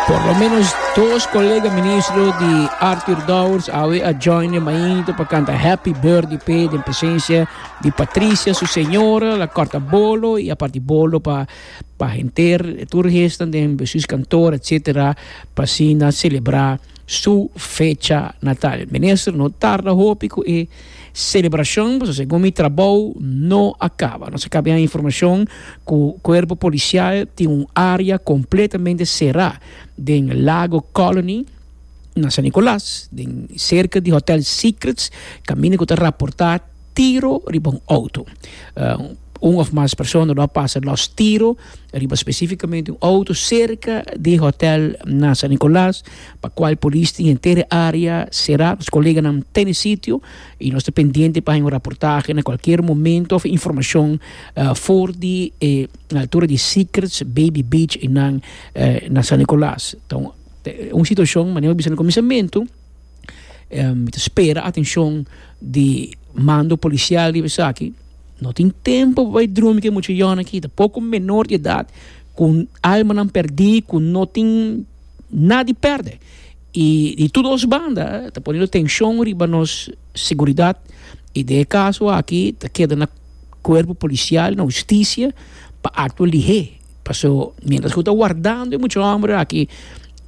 Por lo menos dos colega ministro di Arthur Dowers awe a join de mainito pa canta Happy Birthday pe den presencia di Patricia, su señora, la corta bolo y a parti bolo pa pa henter tur gestan den sus kantoor etcetera pa asina celebra su fecha natal. Minister no tarda hopi cu e celebracion pasobra segun mi trabou no a caba. Nos a caba ya informacion cu cuerpo policial tin un area completamente cera den Lago Colony na San Nicolas den cerca di hotel Secrets caminda cu ta raporta tiro riba un auto. Un of mas persona lo a pasa los tiro riba specificamente un auto cerca di hotel na San Nicolas, pa cual polis tin henter e area cera. Nos coleganan ta e sitio y nos ta pendiente pa haña un raportahe na cualkier momento of informacion for di e altura di Secrets Baby Beach enan na San Nicolas. Ta un situacion, manera mi a bisa na cuminsamentu, em, ta spera atenshon di mando polisial riba esaki. No tin tempo pa bai drumi ke muchachonnan aki, ta poko menor di edat ku almanan pèrdí, ku no tin nada di pèrdè. I di tur dos banda ta poniendo tenshon riba nos seguridat i den e kaso aki ta keda na kuerpo polisial, na hustisia pa aktua lihé. Paso mientras cu ta wardando e mucha homber aki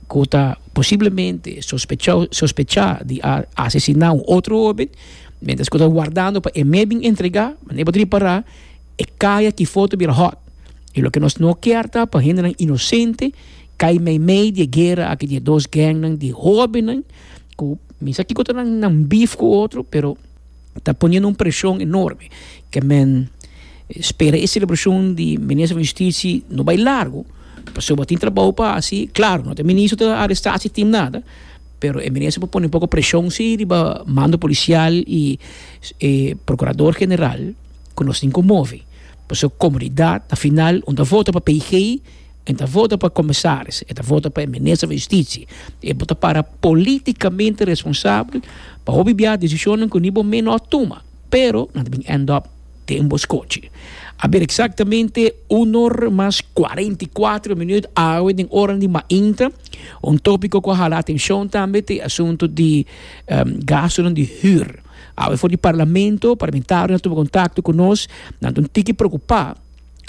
cu ta posiblemente sospecha di a asesina un otro hoben, mientras cu ta wardando pa e mes bin entrega, manera bo ta repara e cay aki for ta bira hot. Y loke nos no kier ta pa hendenan inocente cay meimei di e guera aki di e dos gangnan di hobennan cu misa kico ta nan beef cu otro pero. ta poniendo un presión enorme que men spera e celebración di Minister van Justitie no bay largo pasobra tin trabao pa haci, claro no ta e Minister ta aresta haci tin nada pero e Minister por pone un poco presión si riba mando policial y e Procurador General cu nos tin conmove pasobra comunidad afinal unda vota pa PG. E ta vota pa comisaris, e ta vota pa e minister van justicia, e bo ta para politicamente responsabel pa hopi biaha decisionen cu ni bo mes no a tuma, pero nan ta bin end up den bo scochi. Aber exactamente unor mas cuarenta y cuatro minuut awe den ora di mainta, un topico cu a hala atencion tambe ta e asunto di gastonan di huur. Awe for di parlamento, parlamentario a tuma contacto cu nos, nan ta un tiki preocupa,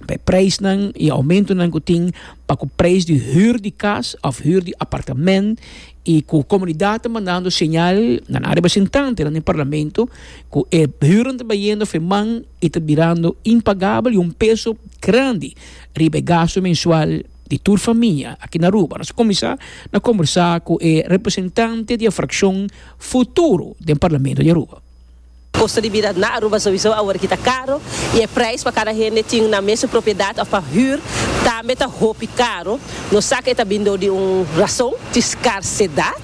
pa e preisnan y aumentonan cu tin pa cu preis di huur di cas of huur di apartamento y cu comunidad ta mandando señal na nan representante na e parlamento cu e huurnan ta bayendo afe man y ta birando impagable y un peso grandi riba e gasto mensual di tur famia aki na Aruba. Nos a cuminsa na conversa cu e representante di e fraccion futuro den parlamento di Aruba. Kosto di bida na Aruba souiso awor aki ta karo y e prijs pa cada hende tin na mes su propiedad of pa huur tambe ta hopi karo. Nos sa cu e ta bin dor di un razon, tin scarcedad.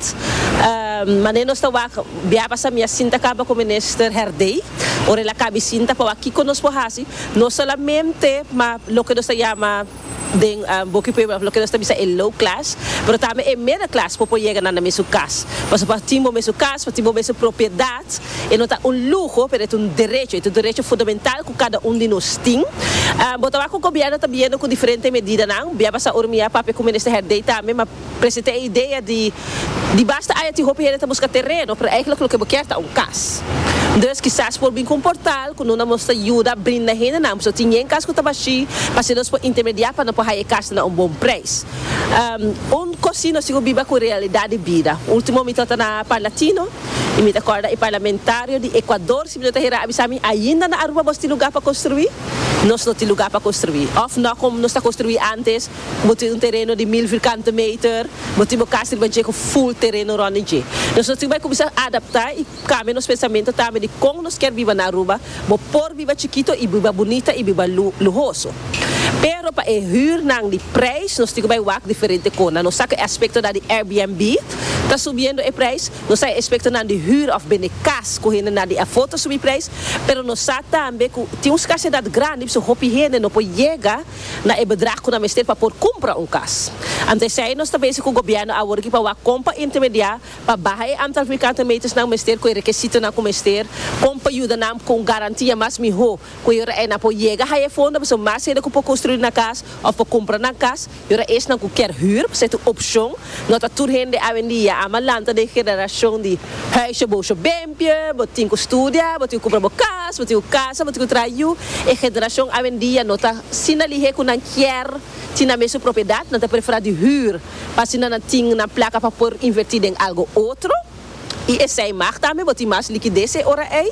Mane nos ta wak bia pasamia sin ta caba cu Minister Herdey ora el a cabi sinta pa wak kico nos por haci, no solamente ma loke nos ta yama. Den bo ki pueblo of loke nos ta bisa e low class, pero tambe e middle class por por yega na nan mesun cas. Pasobra pa tin bo mesun cas, pa tin bo mesun propiedad, e no ta un luho, pero e ta un derecho, e ta un derecho fundamental cu cada un di nos tin. Bo ta wak cu Gobierno ta biniendo cu diferente medidanan, bia basa ora mi ya papia cu Minister Herdey tambe, ma. Present'é e idea di, Di basta aya tin hopi hende ta buska tereno, pero eigenlijk loke bo kier ta un kas. Dus, kisas por bin ku un portal ku no na mos ta yuda brinda hendenan ku ta tin yen kas ku ta bashí pa así nos por intermediá pa no por haya e kasnan na un bon preis. Un kos así no sigu biba ku realidat di bida. Ultimo mi trata na Parlatino i mi ta kòrda e parlamentario di Ekuador si mi no ta hera a bisa mi, Ainda na Aruba bos tin lugá pa konstruí? Nos no tin lugá pa konstruí. Òf, nò kon nos ta konstruí antes? Bo tin un tereno di mil virkante meter, bo tin bo kas riba dje ku ful tereno rònt di dje. Nos lo tin bai kuminsá adaptá i kambia nos pensamentu tambe di kon nos kier biba na Aruba, bo por biba chikitu i biba bunita i biba luhoso. Pero pa e hürnan di preis nos tin ku bai wak diferente kona. Nos sa ku e aspektonan di Airbnb ta subiendo e preis, nos sa e aspektonan di hür òf bende kas ku hendenan di afó ta subí preis, pero nos sa tambe ku tin un skarsedat grandi p'esei hopi hende no por yega. na e bedrag cu nan mester pa por cumpra un cas. Ante esey nos ta bezi cu gobierno awor aki pa wak con pa intermedia pa baha e antal vierkante metersnan mester cu e rekesitonan cu mester, con pa yuda nan cu un garantia mas miho cu e ora ey nan por yega haya e fondo pasobra mas hende cu por construi nan cas of por cumpra nan cas y ora esnan cu kier huur pasobra ta un opcion no ta tur hende awendia a malanta den generacion di huisje boso. limpio, bo tin cu studia, bo tin cu cumpra bo cas, bo tin cu casa, bo tin cu traha yu. E generacion awendia no ta asina lihe cu nan kier tin nan mes su propiedad, nan ta prefera di huur pa asina nan tin nan placa pa por inverti den algo otro y esey mag tambe, bo tin mas liquidez e ora ey.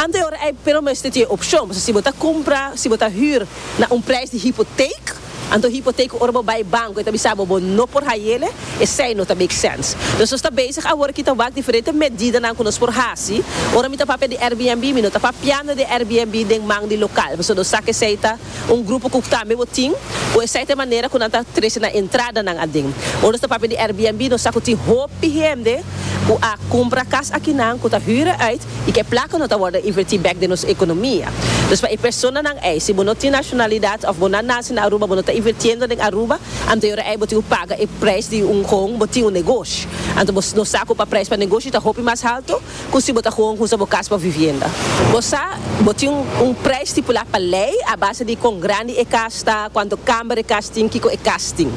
Anto e ora ey pero bo mester tin e opcion, pasobra si bo ta cumpra, si bo ta huur na un prijs di hypotheek, Anto hipoteko ora bo bai banko e ta bisa bo bo no por hayele, esei no ta make sense. Nos nos ta bezig awor aki ta wak diferente medidanan ku nos por hasi. Ora mi ta papia di Airbnb mi no ta papiando di Airbnb den man di lokal pasobra nos sa ku esei ta un grupo ku tambe bo tin ku esei ta e manera ku nan ta trese na entradanan aden. Ora nos ta papia di Airbnb nos sa ku tin hopi hende ku a kumpra kas akinan ku ta hüre uit y ke plaka no ta worde inverti bek den nos economia. Dus pa e personanan ey, si bo no tin nacionalidad of bo na naci na Aruba, bo no ta invertiendo den Aruba, anto e ora ey bo tin cu paga e prijs di un home, bo tin un negoshi. Anto bo no sa cu pa prijs pa negoshi ta hopi mas halto cu si bo ta gewoon husa bo cas pa vivienda. Bo sa, bo tin un prijs stipula pa ley a base di con grandi e cas ta, cuanto camber e cas tin, kico e cas tin.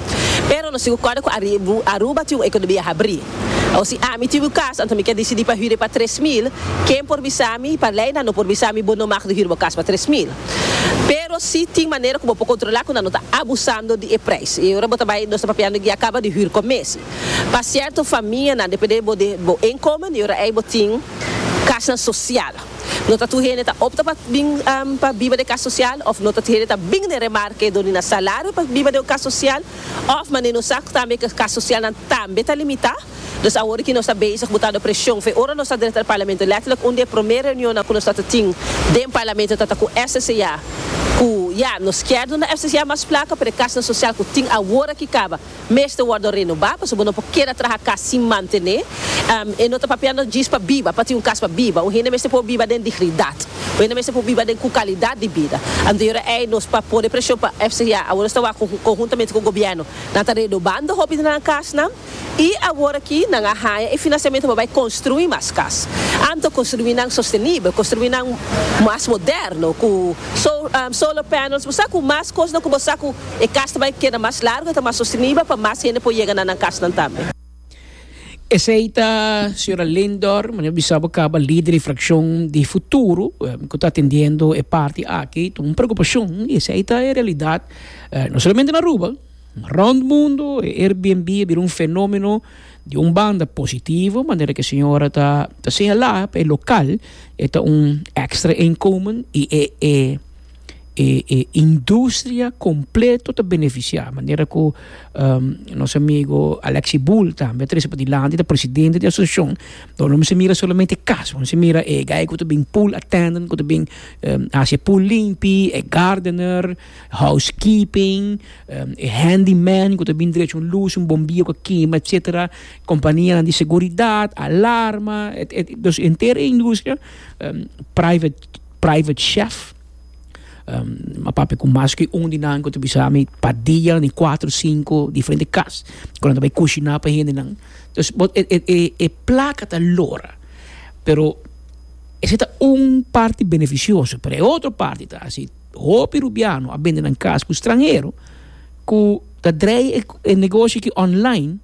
Pero no sigu corda cu Aruba tin un economia habri. O si ami tin un kas, anto mi ke disidí pa hüre pa tres mil, ken por bisami? Pa lei nan no por bisami bo no mag di hüre bo kas pa tres mil. Pero si tin manera ku bo por kontrolá ku nan no ta abusando di e preis. I ora bo ta bai nos ta papiando di a kaba di hür kon mes. Pa sierto famianan depende bo di bo inkomen i ora ei bo tin kasnan sosial. No ta tur hende ta opta pa bin pa biba den e kas sosial òf no ta tur hende ta bin den remarke dor di nan salario pa biba den un kas sosial. Òf manera nos sa tambe ke kas sosialnan tambe ta limitá. Dus awor ki nos ta bezig botando preshon fe ora nos ta drenta na Parlamento, lèterlik un di e promé reunionnan ku nos ta ta tin den Parlamento ta ta ku FCCA, ku ya, nos kier duna FCCA mas plaka, pero e kasnan sosial ku tin awor aki kaba mester wòrdu renobá, pasobra no por keda traha kas sin mantené. E no ta papia nos djis pa biba, pa tin un kas pa biba. Un hende mester por biba den digridat. Wende mester por biba den cu calidad di bida. Anterior ey nos pa pone presion pa FCGA, awor nos ta wak conhuntamente cu gobierno. Nan ta redobando hopi di nan casnan y awor aki nan a haya e financiamento pa bay construi mas cas. Anto construinan sostenibel, construinan mas moderno cu solar panels, bo sa cu mas cosnan cu bo sa cu e cas ta bay keda mas largo y ta mas sostenibel pa mas hende por yega na nan casnan tambe. Esey ta Sra. Lindor, mi no bisa bo caba lider di fraccion di futuro, mi cu ta atendiendo e parti aki, ta un preocupacion y esey ta e realidad no solamente na Aruba, ma rond mundo, e Airbnb a bira un fenomeno, di un banda positivo, manera cu e señora ta señala, pa e local e ta un extra inkomen y e. e e industria completo ta beneficia manera cu nos amigo Alexi Bull tambe a trece pa dilanti ta presidente di asociacion dor lo mester mira solamente cas lo mester mira e guy cu ta been pool attendant cu ta been haci e pool limpi e gardener house keeping e handy man cu ta been drecha un luz un bombilla cu a kima etcetera companianan di seguridad alarma e entero e industria private private chef. a papia cu mas cu un di nan cu ta bisa mi pa dia ni cuatro, cinco diferente cas cu nan ta bay cushina pa hendenan. Dus bo e e e placa ta lora pero esey ta un parti beneficioso pero e otro parti ta si hopi rubiano a bende nan cas cu stranhero cu ta draai e negoshi aki online.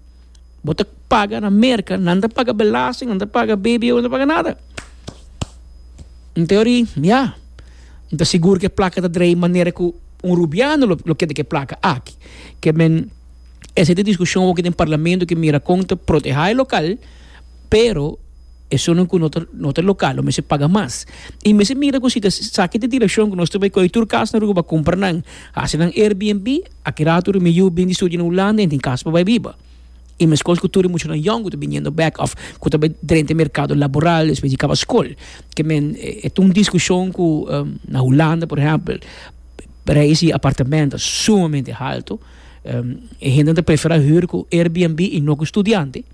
Bo ta paga na Merka, nan ta paga belasting, nan ta paga BBO, nan ta paga nada. En teoria, ya. Nan ta sigur ku e plaka ta drei manera ku un rubiano lo keda ku e plaka aki. Ke men, esei ta e diskushon aki den parlamento ku mira kon ta protehá e lokal, pero esun ku no ta no ta lokal lo mester paga mas. I mester mira ku si ta esaki ta direkshon ku nos ta bai koyo tur kas na Aruba, kumpra nan, hasi nan Airbnb, Aki rato ri mi yu bin di studia na Hulanda en tin kas pa bai biba. I meskos ku tur e muchanan yòn ku ta biniendo bèk òf ku ta bai drenta e merkado laboral despues di kaba skol. Ke men e ta un diskushon ku na Hulanda por ehèmpel preis di apartamènt ta sumamente haltu. E hendenan ta preferá hür ku Airbnb i no ku studiante.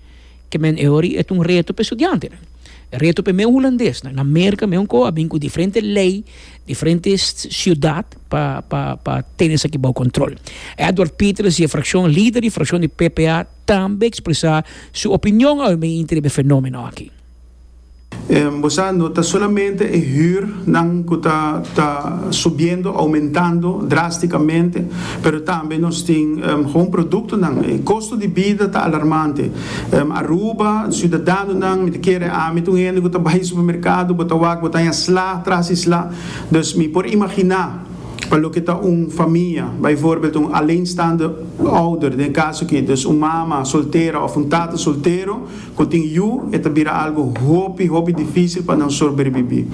ke men e hori e ta un reto pa e studiantenan. E reto pa e meu hulandesnan. Na Merka meu ko a bin ku diferente lei, diferente siudat pa pa pa tene esaki bou kontrol. Edward Pieters di e frakshon, lider di frakshon di PPA tambe ekspresá su opinion awe mei inter e fenomeno aki. Bo sa, no ta solamente e hür nan cu ta ta subiendo, aumentando drásticamente, pero tambe nos tin gewoon productonan. E costo di bida ta alarmante. Aruba, ciudadanonan, mi ta kere ami ta un hende cu ta bay supermercado, bo ta wak, bo ta haña sla tras di sla. Dus mi por imaginá pa loke ta un famia, bijvoorbeeld un alleenstaande ouder den e caso aki, dus un mama soltera of un tata soltero, Ku tin yu, e ta bira algu hopi, hopi difísil pa nan sorberbibí.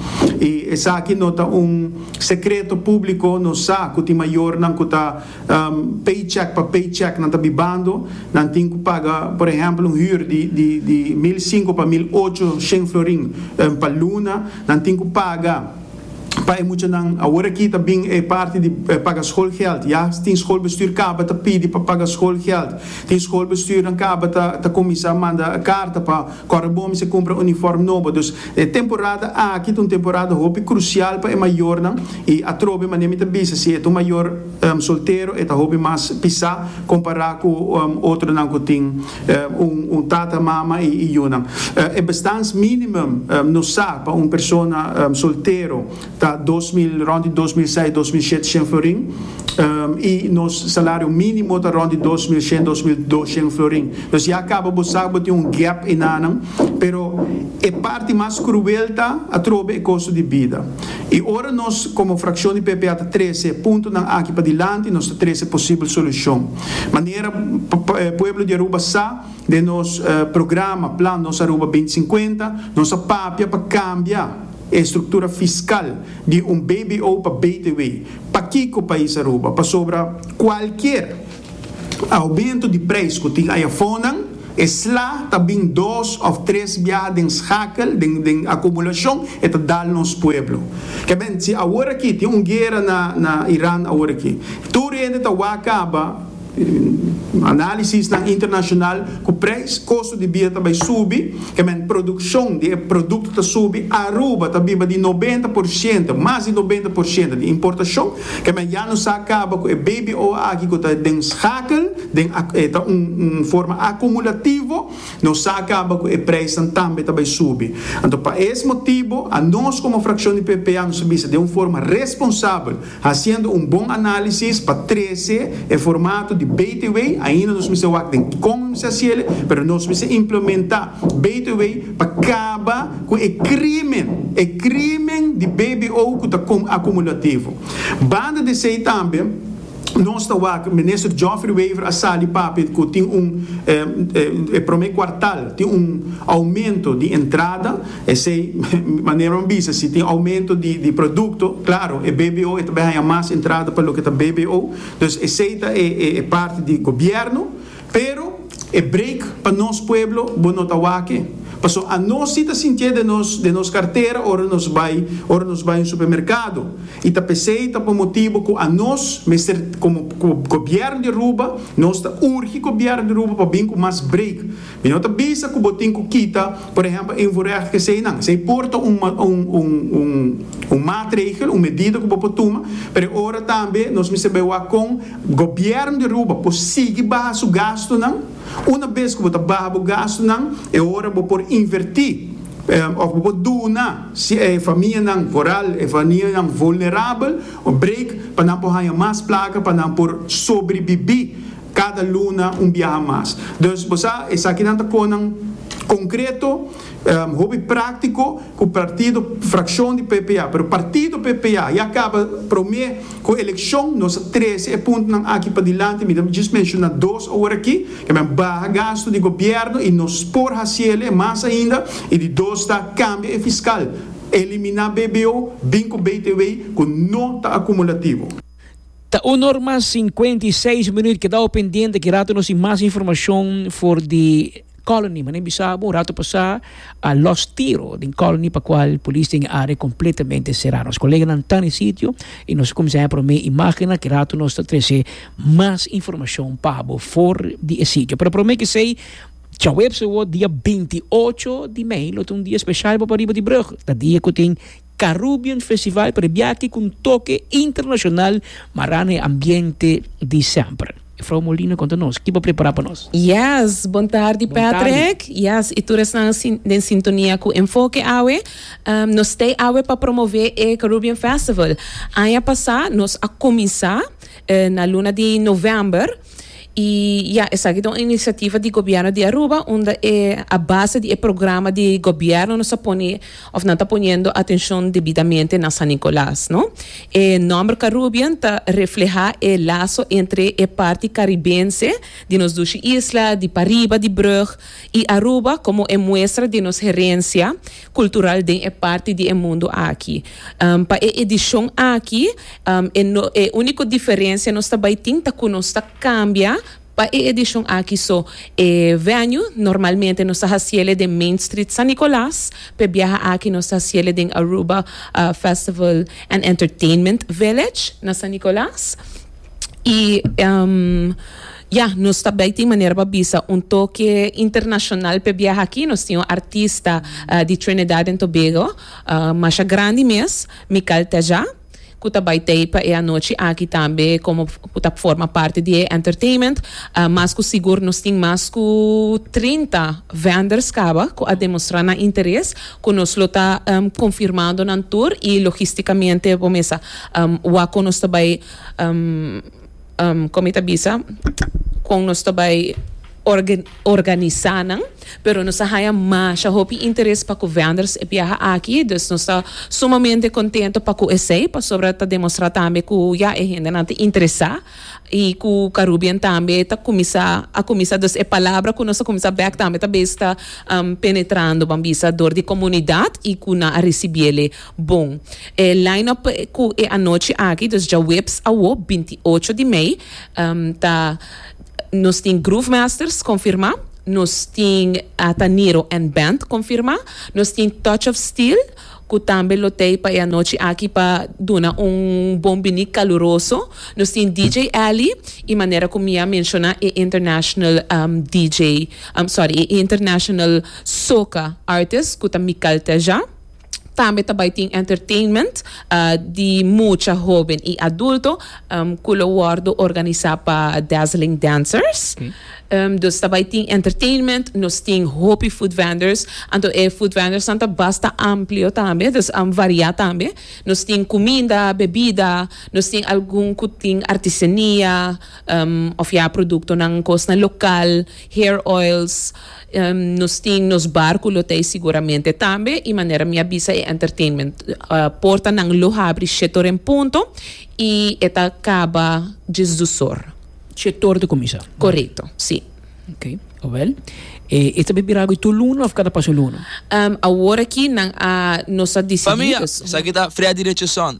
I esaki no ta un sekreto públiko, nos sa ku tin mayornan ku ta paycheck pa paycheck nan ta bibando, nan tin ku paga, por ehèmpel, un hür di mil sinku pa mil ocho shen florin pa luna, nan tin ku paga, Pa e muchanan awor aki ta bin e parti di paga schoolgeld. Ya tin schoolbestuur kaba ta pidi pa paga schoolgeld. Tin schoolbestuurnan kaba ta kuminsa manda karta pa kòrda bon mester kumpra uniform nobo. Dus e temporada aki ta un temporada hopi krusial pa e mayornan i atrobe mane mi ta bisa si e ta un mayor. soltero e ta hopi mas pisá kompará ku otronan ku tin un tata, mama i yunan. E bestans mínimum nos sa pa un persona soltero ta dos mil, rònt di dos mil seis, dos mil shete shen florin i nos salario mínimo ta rònt di dos mil shen, dos mil dos shen florin. Dus ya kaba bo sa ku bo tin un gèp enanan, pero e parti mas kruel ta atrobe e kostu di bida. I ora nos komo frakshon di PPA ta trese puntonan aki padilanti, nos ta trese posibel solushon. Manera pueblo di Aruba sa, den nos programa, Plan Nos Aruba binti sinkuenta, nos a papia pa kambia e struktura fiskal di un BBO pa BTW. Pakiko pais Aruba? Pasobra kualkier. Aumento di prijs cu tin ayafonan, e sla ta bin dos of tres biaha den schakel, den acumulacion, e ta dal nos pueblo. Cabien, si aworaki tin un guera na Iran aworaki, tur hende ta wak caba, analisisnan internacional, cu prijs costo di bida ta bay subi, cabien produccion di e producto ta subi, Aruba ta biba di noventa por ciento, mas di noventa por ciento, di importacion, E men ya no sa caba cu e bbo aki cu ta den schakel, den a e ta un un forma acumulativo, no sa caba cu e prijsnan tambe ta bay subi. Anto pa es motibo a nos como fraccion di PPA nos a bisa den un forma responsabel, haciendo un bon analisis pa trece e formato di btw, ainda nos mester wak den con nos mester haciele, pero nos mester implementa btw, pa kaba ku e krimen, e krimen di bbo ku ta kon akumulativo. Banda di esei tambe nos ta wak Minister Geoffrey Wever a sali papia ku tin un e prome kuartal tin un oumento di entrada, esei manera nan bisa si tin oumento di produkto klaro e bbo e ta bai haña mas entrada pa loke ta bbo, dus esei ta e parti di gobièrnu. Pero e break pa nos pueblo bo no ta wake, paso a nos si ta sintié den nos den nos kartera ora nos bai ora nos bai un supermerkado i ta p'esei ta por motibu ku a nos mester komo gobièrnu di Aruba nos ta urgi gobièrnu di Aruba pa bin ku mas break. Mi no ta bisa ku bo tin ku kita por ehèmpel invoerecht keseinan, esei por ta un un un maatregel un medida ku bo por tuma pero e ora tambe nos mester bai wak kon Gobièrn di Aruba por sigui baha su gastunan. Una bes ku bo ta baha bo gastunan, e ora bo por invertí òf bo por duna si e famianan voral, e famianan vulnerabel, un break pa nan por haña mas plaka pa nan por sobribibí kada luna un biaha mas. Dus bo sa esakinan ta konan konkreto. Hopi práktiko ku partido frakshon di PPA, pero partido PPA ya kaba promé ku elekshon, nos a trese e puntonan aki padilanti. Mi ta djis menshoná dos ora aki, ke men baha gastu di gobièrnu i nos por hasiele mas ainda, i di dos ta kambia e fiskal, eliminá BBO, bin ku BTW ku no ta akumulativo. Ta un or mas sinkuenta i seis minut, keda awe pendiente, ki rato nos tin mas informashon for di. Colony, mane bisa bo un rato pasá a los tiro den Colony pa cual polis tin e área completamente cerá. Nos coleganan ta den sitio y nos a cuminsá haya promé imágennan. Ki rato nos ta trece mas informacion pa bo for di e sitio. Pero promé k'esei djaweps awor dia binti ocho di mei lo ta un dia special bo pariba di brug. Ta dia cu tin. Carubbean Festival prebiati cu un toke internacional mará na e ambiente di semper. Mefrou Molina conta nos kiba prepara pa nos. Yes, bon tardi Patrick. Yes, y tur esnan den sintonia cu Enfoke awe. Nos stay awe pa promove e Carubbean Festival. Aña pasa nos a cuminsa na luna di november. Y ya, esaki ta un iniciativa di Gobierno di Aruba unda e a base di e programa di Gobierno nos a pone of nan ta poniendo atencion debidamente na San Nicolas, no. E nomber Carubien ta refleha e laso entre e parti caribense di nos dushi isla, di pariba di brug, y Aruba como e muestra di nos herencia, cultural den e parti di e mundo aki. Pa e edicion aki e no e unico diferencia nos ta bay tin ta cu nos ta cambia pa e edicion aki so e venue normalmente nos ta haciele den Main Street San Nicolas pe biaha aki nos ta haciele den Aruba Festival and Entertainment Village na San Nicolas y Ya, nos ta bai tin manera pa bisa un toke internashonal p'e biaha aki. Nos tin un artista di Trinidad en Tobago, masha grandi mes, Mical Teja, cu ta bai t'ey pa e anochi aki tambe como cu ta forma parti di e entertainment. Mas cu sigur nos tin mas cu trinta vendors caba cu a demostra nan interes, cu nos lo ta confirmando nan tur y logisticamente bo mesa wak cu nos ta bai. Con mi ta bisa con nos ta bay organisa nan, pero nos a haya masha hopi interes pa cu venders e biaha aki, dus nos ta sumamente contento pa cu esey, pasobra ta demostra tambe cu ya e hendenan ta interesa y cu Carubbean tambe ta cuminsa a cuminsa, dus e palabra cu nos a cuminsa bek tambe ta bes ta penetrando, ban bisa, door di comunidad y cu nan a ricibiele Bon, e line-up cu e anochi aki, dus djaweps awo, binti i ocho di mei, ta, Nos tin Groove Masters confirma, nos tin Ataniro and Band confirma, nos tin Touch of Steel, cu tambe lo t'ei pa e anochi aki pa duna un bon bini caluroso, nos tin DJ Ally i manera cu mi a menciona e international DJ, sorry, e international soca artist cu ta Mical Teja. Tambe ta bai tin entertainment di mucha hoben i adulto ku lo wòrdu organisá pa Dazzling Dancers. Dus ta bai tin entertainment, nos tin hopi food vendors, anto e food vendorsnan ta basta amplio tambe, dus variá tambe. Nos tin kuminda, bebida, nos tin algun ku tin artesania, òf ya produktonan kosnan lokal, hair oils. Nos tin nos barku lo ta e siguramente tambe i manera mi a bisa e entertainment portanan lo habri shete or en punto i e ta kaba djes dusor. Shete or ta kuminsá. Korekto, si. Ok, awel e ta bira agu tur luna òf kada pasha luna? Awor aki nan a nos a disidí. Famia, esaki ta Freddy Richardson,